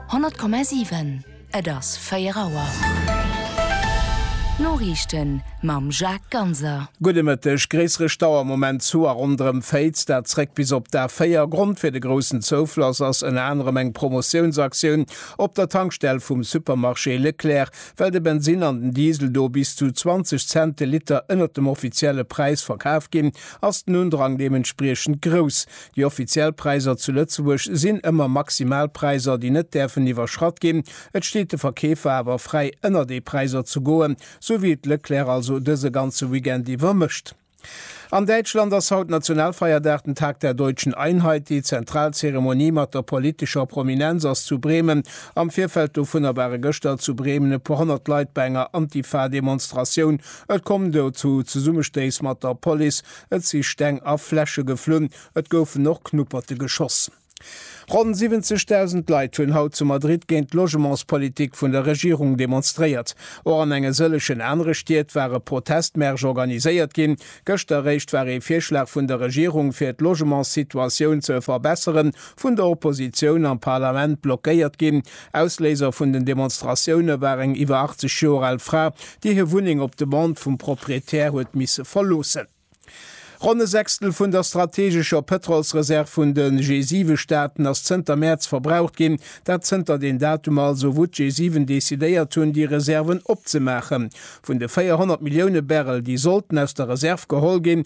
100,7 Et ass 4 Auer. D'Noriichten mam Jacques Ganser. Gudde Mëtteg. Gréissere Stau am Moment zu a ronderëm Féiz, dat zréck bis op d'A4. Grond fir de groussen Zoufloss ass ënner anerem eng Promotiounsaktioun op der Tankstell vum Supermarché Leclerc, well de Bensinn an den Diesel do bis zu 20 Cent de Liter ënnert dem offizielle Präis verkaf ginn, ass den Undrang deementspriechend grouss. Déi offiziell Präiser zu Lëtzebuerg sinn ëmmer Maximalpräiser, déi net däerfen iwwerschratt ginn. Et steet de Verkeefer awer fräi, ënner déi Präiser ze goen, sou wéi et Leclerc also dëse ganze Weekend iwwer mécht. An Däitschland ass haut Nationalfeierdag, den Tag der Deutschen Einheit. Déi zentral Zeremonie mat der politescher Prominenz ass zu Bremen. Am Virfeld dovunner ware gëschter zu Bremen e puer honnert Leit bei enger Antifa-Demonstratioun. Et koum do zu Zesummestéiss mat der Police. Et si Steng a Fläsche geflunn, et goufen och Knupperte geschoss. Ronn 70.000 Leit hunn haut zu Madrid géint d'Logementspolitik vun der Regierung demonstréiert. Och an enge sëllegen anere Stied war e Protestmärsch organiséiert ginn. Gëschter eréischt war ee Virschlag vun der Regierung, fir d'Logementssituatioun ze verbesseren, vun der Oppositioun am Parlament blockéiert ginn. Ausléiser vun den Demonstratioune war eng iwwer 80 Joer al Fra, déi hir Wunneng op Demande vum Proprietär huet misse verloossen. Ronn e Sechstel vun der strategescher Pëtrolsreserv vun de G7-Staaten ass zënter Mäerz verbraucht ginn. Dat zënter den Datum also, wou d'G7 decidéiert hunn, déi Reserven opzemaachen. Vun de 400 Millioune Barrel, déi sollten aus der Reserv geholl ginn,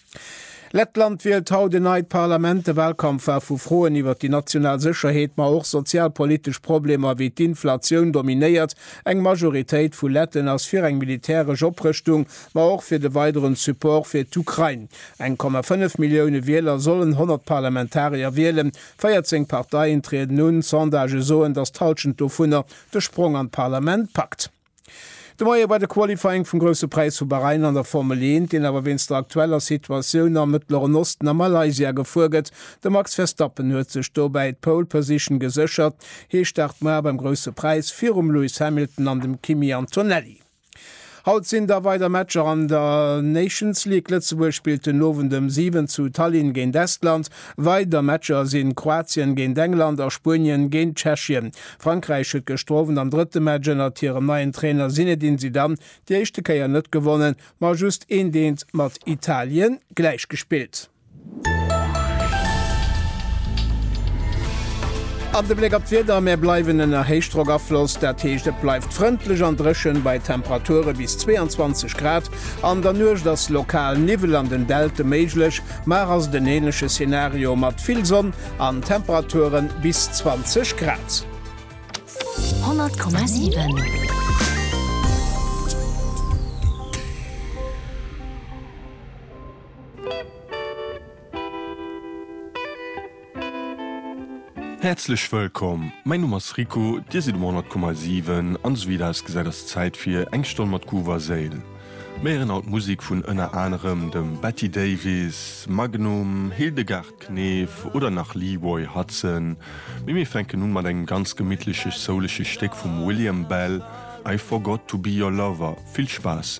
Lettland wielt haut en neit Parlament. De Wahlkampf war vu Froen iwwer déi national Sécherheet, ma och sozialpolitesch Problemer wéi d'Inflatioun dominéiert. Eng Majoritéit vu Letten ass fir eng militäresch Oprëschtung, ma och fir de weideren Support fir d'Ukrain. 1,5 Millioune Wieler sollen 100 Parlamentarier wielen. 14 Parteien trieden un. Sondagë soen, datt d'Hallschent dovunner de Sprong an d'Parlament packt. De Moie war de Qualifying vum Grousse Präis vu Bahrain an der Formel 1, deen awer wéinst der aktueller Situatioun am Mëttleren Osten a Malaysia gefuer gëtt. De Max Verstappen huet sech dobäi d'Pole Position geséchert. Hie start muer beim Grousse Präis virum Lewis Hamilton an dem Kimi Antonelli. Haut sinn da weider Matcher an der Nations League. Lëtzebuerg spillt den Owend ëm 7 zu Tallinn géint Estland. Weider Matcher sinn Kroatien géint England a Spuenien géint Tschechien. Frankräich huet gëschter Owend am drëtte Match ënnert hirem neien Trainer Zinedine Zidane déi éischte Kéier net gewonnen, ma just eent eent mat Italien gläich gespillt. An de Bléck op d'Wieder, Mir bleiwen ënner Héichdrockafloss, dat heescht et bleift frëndlech an dréchen bei Temperature bis 22 Grad. An der Nuecht ass lokal Niwwel an den Deltë méiglech. Mar ass et en ähnleche Szenario mat vill Sonn an Temperaturen bis 20 Grad. 100,7. Häerzlech wëllkomm, mäin Numm ass Rico, dir sidd um 100,7 an esou wéi et ausgesäit ass Zäit fir eng Stonn mat Groove a Séil. Mir héieren haut Musik vun ënner anerem dem Betty Davis, Magnum, Hildegard Knef oder nach Leeroy Hutson, mee mir fänken un mat engem ganz gemittleche soulege Stéck vum William Bell, I Forgot To Be Your Lover. Vill Spaass!